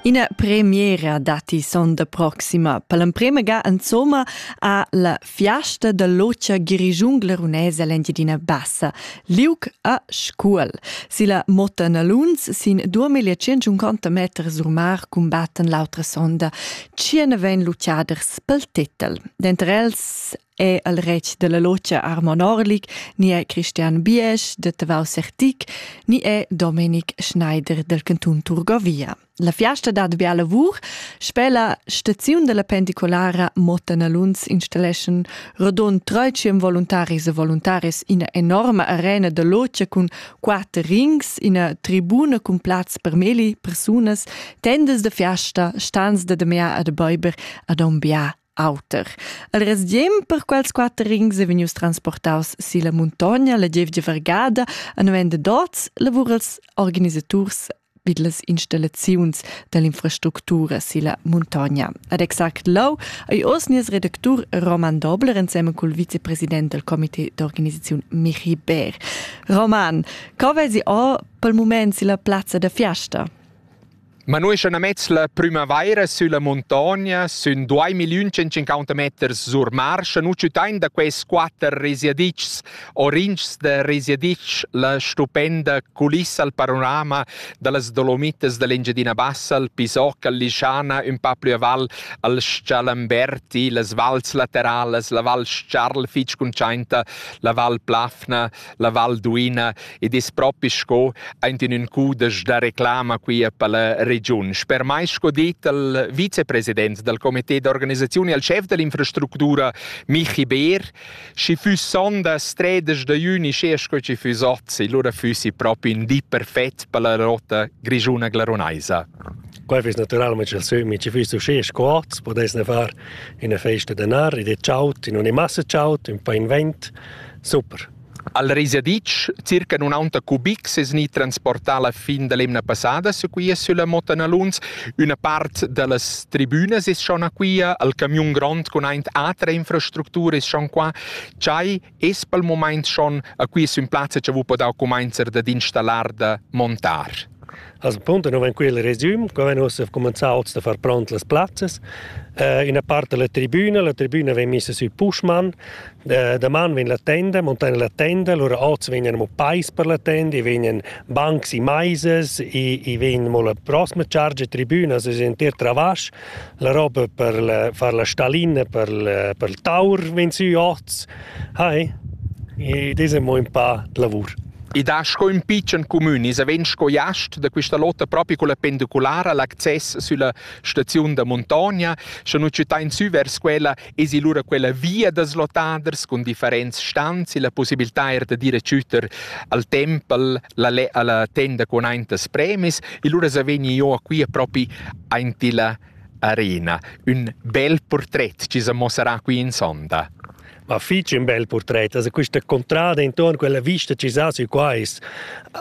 Ina premiera datti sonda proxima. Per l'emprema ga insomma a la fiasta da lotscha Girigiun Glerunese l'Engiadina Bassa, Liuc a Scuol. Si la Motta Naluns sin 2150 meter sur mar cumbattan l'autra sonda. Tschien vegn lutschaders pel titel. Denter els è el retg della locia Armon Orlik, ni è Christian Biesch de Tavau Sertic, ni è Domenic Schneider del cantun Turgovia. La fiasta dat bia lavur, sper la staziun della pendicolara Motanalunz installeschan rodond treiciem voluntaris e voluntaris ina enorma arena de locia cun quater rings, ina tribuna cun plaz per meli, persunas, tendas de fiasta, stans de demea ad beiber ad ombia auter. Al resdiem per quels quatter rings è vegnius transportaus silla muntogna la gievgia vergada a november dots lavurals organisaturs vid las installaziuns dall'infrastructura silla muntogna. Ad exact lau ei oz nies redactur Roman Dobler ensemen cul vicepresident del comité d'organisaziun Michi Bär. Roman, co vesi o pel mument silla plazza da fiasta? Ma nus essan amets la prümavaira sülla muntogna sün duai milliun centcinquanta meters sur marsch e nu tschütain da quels quatter resiadichs orinchs da resiadich la stupenda culissa al panorama da las Dolomitas da l'Engiadina Bassa, al Pisoc, al Lischana, ün pa plü aval al Schalamberti, las vals lateralas, la Val Charl fich cuntschainta, la Val Plafna, la Val d'Uina ed es propi sco aint in ün cudesch da reclama qui per la regiun. Sper mai sco dit al vicepresident dal comité d'organisazione e al chef dell'infrastruttura Michi Beer, schi füss sondas 13 da juni sche sco ci füss ozzi, lura füssi propi in di perfett per la rotta grigiuna-glaronaisa. Quel fiss naturalmente il sömi, ci fiss uscì sco hoz, podess ne far in festa de nar, ed è ciaut, in una massa ciaut, un po' in vent, Super. Al Risaditsch, circa nunanta cubic, es gnit transportà la fin da l'emna passada su quia sülla Motta Naluns. Üna part da las tribünas es schon a quia, al camiun grond cun aint atra infrastructura es schon qua. Chai es pel mumaint schon a quia sün plazza cha vo podà cumainzer dad installar da montar. Als punto non van quel resum, qua van ussa cominciato a far pront las plazzas. Uh, ina part della tribuna, la tribuna vem messa sui pushman, da, da man vegn la tenda, montana la tenda, allora oz vegnan mo pais per la tenda, i vegnan bancs e maises, i, i vegn mo la prossima charge tribuna, se intero travasch, La roba per la, far la stallina per, la, per il taur vegn sü oz. Hai, ed es amo ün pa d'lavur. I dà sco ün pitschen cumün, i vegn sco jast da quista lotta propi culla pendiculara, l'access sülla staziun da muntogna, scha nu tschütain sü vers quella Esi lura quella via da slottaders cun differents stans e la possibilità er da dire tschütter al tempel la, alla tenda con aintas premis e lura sa vegni io a qui propi aint la arena. Un bel portret ci sa mossarà qui in sonda. Ma fich un bel portret, also questa contrada intorno, quella vista ci sa sü qua ist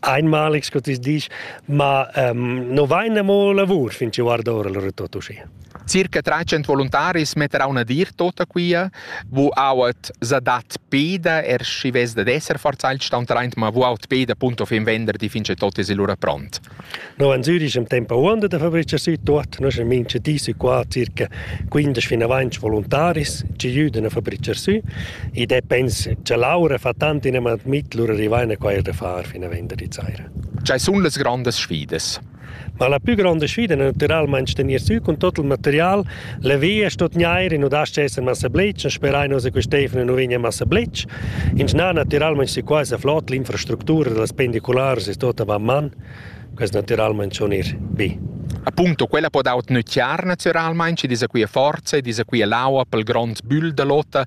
einmal, ich disch, ma ähm, no vaina mo lavur fin ci guarda ora lura tutto uscì. Circa 300 voluntaris metter auna dir tota quia, vu auat za dat peda, er schi vess da esser forzailt stauntraint, ma vu aut peda punto fin vender di fince tot es lura pront. No an Zürich am tempo uanda da fabrica sü tot, no sun mince disi qua circa 15 fin avanti voluntaris ci jüdan a fabrica sü, id è pens cha Laura fa tant in amat mit, lura rivaina quair da far fin a vender di zaira. C'hai sun las grandas sfidas. Ma la pü gronda sfida è natüralmaing stenir sü cun tuot il material. La via sto tgnair, i nu das-cha esser massa blitsch, sperain nus che Stefano nu vegna massa blitsch. Inschnà natüralmaing si quaisa flot, l'infrastructura da las pendicularas es tuot avant man. Quest natüralmaing schon ir bi. Appunto, quella po dar tgnüttiar natüralmaing, chi disa qui a forza, disa qui a l'aua pel grond bügl da lotta.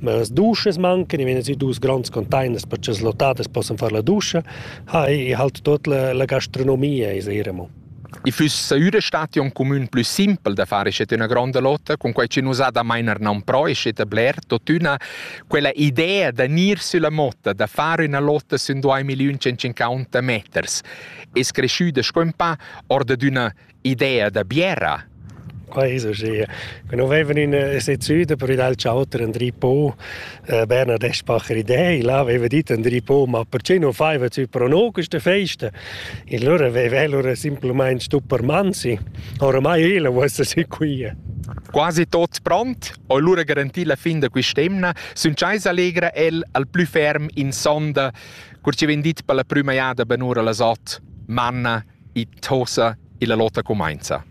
Ma las duschas mancan, i vegnan si dus gronds containers per che las lottadas possan far la duscha. Ha, i halt tut la, la gastronomia, is era mo. I füss saüra stat un comün plü simpel da fare scet üna gronda lotta, con quai che nus ha da meiner nan pro e scet a bler, totüna quella idea da gnir sülla motta, da fare üna lotta sün 2.150 meters, es creschüda sco ün pa or da d'üna idea da biera. Also schön. Genau wenn wir in äh, Süden per il Chauter Andri Po äh, Bernhard Eschbacher Idee, là aveva dit Andri Po, ma perché non faiva zu prono queste feste? In loro aveva allora semplicemente Stuppermanzi. Oramai io vuoi sì qui. Quasi tot pront, allora garantì la fin da quest'emna, sun Chais allegra el al plü ferm in sonda, cur ci vendit per la prima jada benura la sot, Manna, i tosa e la lotta cumainza.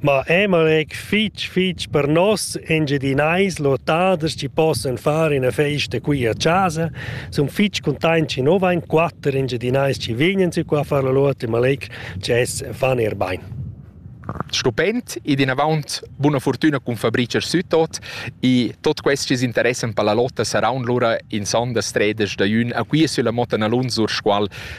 Ma Emalek fich fich per nos Engiadinais lottaders chi possan far üna festa qui a casa sun fich containts chi nu vain quatter Engiadinais chi vegnan sü qua a far la lotta, ma Malek dschess fan eir bain. Stupend ed inavant buna fortüna cun Fabricer Sütot e tot quels chi s'interessan per la lotta saraun lura in sonda stredas da jün a qui sülla Motta Nalun sur Scual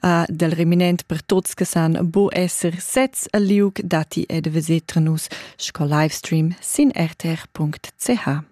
a del reminent per tuts che san bu esser sezs al liug dati ed vesetrenus sco livestream sin rtr.ch.